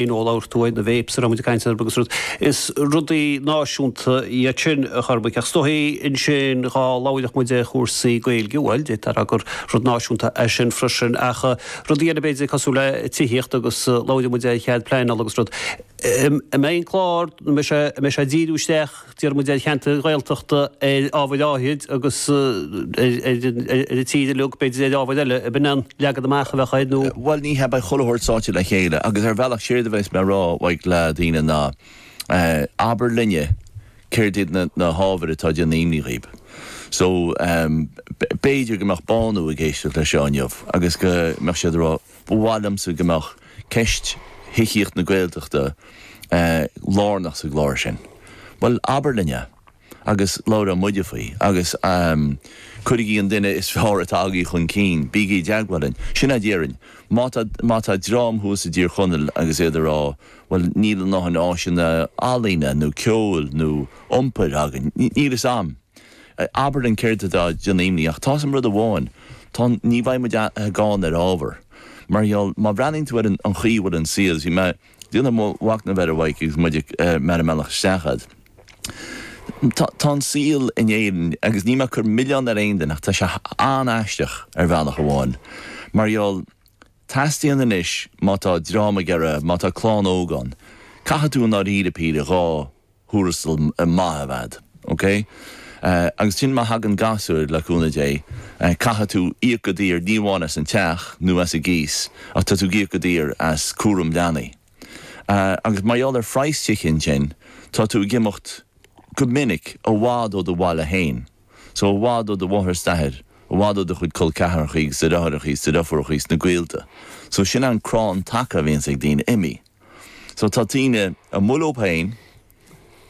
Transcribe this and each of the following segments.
in ól, labhair tú ar na vapes a raibh muid ag caint orthu agus rud is rudaí náisiúnta iad sin, cuir i gcás, ach is dóigh ansin dhá labhródh muid ar chúrsaí Gaeilge bhuel déarfá gur rud náisiúnta é sin freisin ach rudaí eile b'fhéidir cosúil le tithíocht agus labhródh muid ar chead pleanála agus rud a mbeidh an clár a mbeidh sé a mbeidh sé ag díriú isteach díreach ar cheantair Ghaeltachta ar ábhair áithrid agus ar an tír uilig, b'fhéidir ar ábhair eile, a b'in an leagan amach a bheadh air nó? Bhuel ní hea, beidh chuile shórt sáite le chéile agus ar bhealach séard a bheas mé ag rá uaidh le daoine ná abair linne céard iad na hábhair atá ag déanamh imní dhaoibh so b'fhéidir go mbeadh Bánú ag éisteacht leis seo inniu agus go mbeadh siad ag rá Ba mhaith liomsa go mbeadh ceist thithíocht na Gaeltachta lárnach sa gclár sin. Bhuel, abair linn é agus labhróidh muide faoi agus cuirigí an duine is fearr atá agaibh chun cinn, bígí i dteagmháil linn. Sin a déarfainn. Má tá dream thuas i dTír Chonaill agus iad ag rá bhuel níl a ndothain áiseanna ealaíne nó ceoil nó iompair againn, níl a fhios a'm. Abair linn céard atá ag déanamh imní ach tá's a'm rud amháin, tá, ní bheidh muid gann ar ábhar. Mar gheall, má bhreathnaíonn tú ar an chaoi a bhfuil an saol, bhí mé ag déanamh mo mhacnamh air, a Mhaidhc, agus muid ag, mé ar an mbealach isteach fhad, tá, tá an saol in Éirinn agus níl mé a' cur milleán ar aon duine ach tá sé an-aisteach ar bhealach amháin mar gheall, teastaíonn anois má tá dream ag iarraidh, má tá lánúin óg ann, caithfidh tú i ndáiríre píre dhá, thuarastal maith a bheith a'd. OK? Agus ansin má thagann gasúir, le cúnamh Dé, caithfidh tú íoc go daor ní amháin as an teach nó as an gcíos ach tá tú ag íoc go daor as cúram leanaí. Agus mar gheall ar phraghas tithe ansin tá tú ag imeacht go minic i bhfad ó do bhaile féin. So i bhfad ó do mháthair is d'athair, i bhfad ó do chuid col ceathrachaí agus do dhearthaireachaí is do dheirfiúrachaí is na gaolta. So sin an crann taca a bhíonns ag daoine imithe. So tá daoine amuigh leob féin,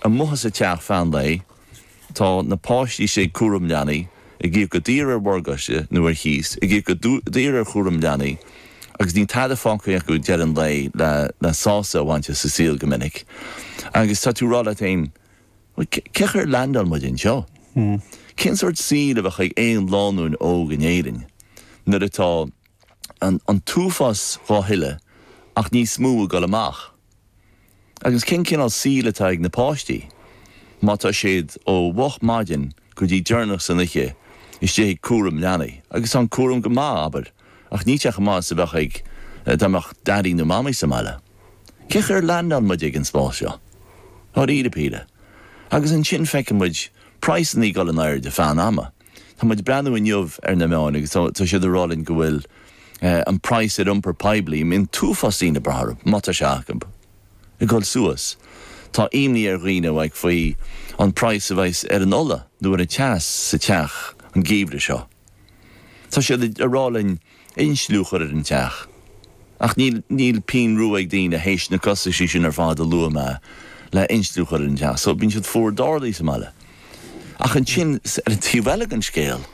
amuigh as a teach feadh an lae, tá na páistí istigh ag cúram leanaí, ag íoc go daor ar mhorgáiste nó ar chíos, ag íoc go daor ar chúram leanaí agus níl tada fágtha acu ag deireadh an lae le sásamh a bhaint as a saol go minic. Agus tá tú ag rá leat féin, bhuel cén chaoi ar leaindeáil muid anseo? Cén sórt saoil a bheadh ag aon lánúin óg in Éirinn nuair atá. an t-uafás dhá thuilleamh ach níos mó ag dul amach. Agus cén cineál saoil atá ag na páistí má tá siad ó mhoch maidin go dtí deireanach san oiche istigh ag cúram leanaí agus tá an cúram go maith, abair, ach níl sé chomh maith is a bheadh dá mbeadh daidí nó mamaí sa mbaile. Cén chaoi ar leaindeáil muid sa spás seo? Dháiríre píre. Agus ansin feiceann muid praghsannaí ag dul in airde feadh an ama. Tá muid ag breathnú inniu ar na meáin agus tá siad ag rá linn go bhfuil an praghas ar iompar poiblí, a mbíonn an t-uafás daoine ag brath orthu, má tá sé acu, ag dul suas. Tá imní ar dhaoine ah faoi an praghas a bheas ar an ola nó ar an teas sa teach an geimhreadh seo. Tá siad ag rá linn. insliú chur ar an teach. Ach níl, níl pínn rua ag daoine théis na costaisí sin ar fad a luaigh mé le insliú chur ar an teach so bíonn siad fuar dearóil sa mbaile. Ach ansin ar an taobh eile den scéal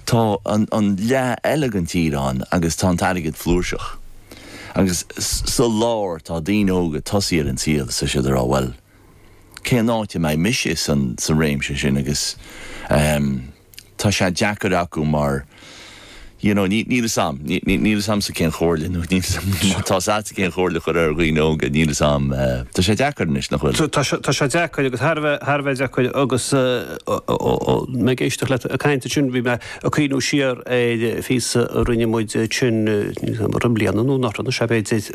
tá an, an leath eile den tír ann agus tá an t-airgead flúirseach. Agus sa lár tá daoine óga ag tosaí ar an saol is iad ag rá bhuel cén áit a mbeidh mise san, sa réimse sin agus ehm, tá sé deacair acu mar you know níl fhios a'm, níl fhios a'msa cén chomhairle nó níl fhios a'm má tá's a'tsa cén chomhairle a chur ar dhaoine óga, níl fhios a'm, tá sé deacair anois nach bhfuil? Tá sé, tá sé deacair agus thar a bheith, thar a bheith deacair agus mé ag éisteacht leat ag caint ansin bhí mé ag cuimhniú siar ar phíosa a rinne muid ansin, níl fhios a'm, an bhfuil bliain nó nára nó sea b'fhéidir,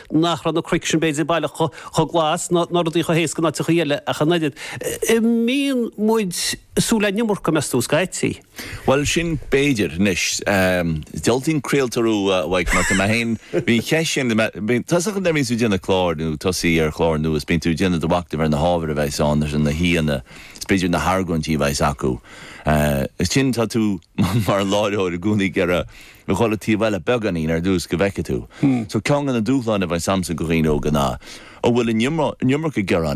nach raibh na cnoic sin b'fhéidir baileach chomh glas ná rudaí chomh héasca sna tíortha eile ach an oiread. An mbíonn muid ag súil le an iomarca, meas tú, scaití. Bhuel, sin b'fhéidir. Anois, diabhaltaí an craoltóir thú, a Mhaidhc, mar tá mé féin, bhí an cheist sin, tusa nuair a bhíonn tú ag déanamh cláir nó ag tosaí ar chlár nua is bíonn tú ag déanamh do mhacnamh ar na hábhair a bheas ann is ar na haíonna is b'fhéidir na hargóintí a bheas acu. Ansin tá tú mar láithreoir i gcónaí ag iarraidh. a dhul an taobh eile beagáinín ar dtús go bhfeice tú. So ceann go na dúshláin a bheas a'msa go dhaoine óga ná, an bhfuil an iomarca gearáin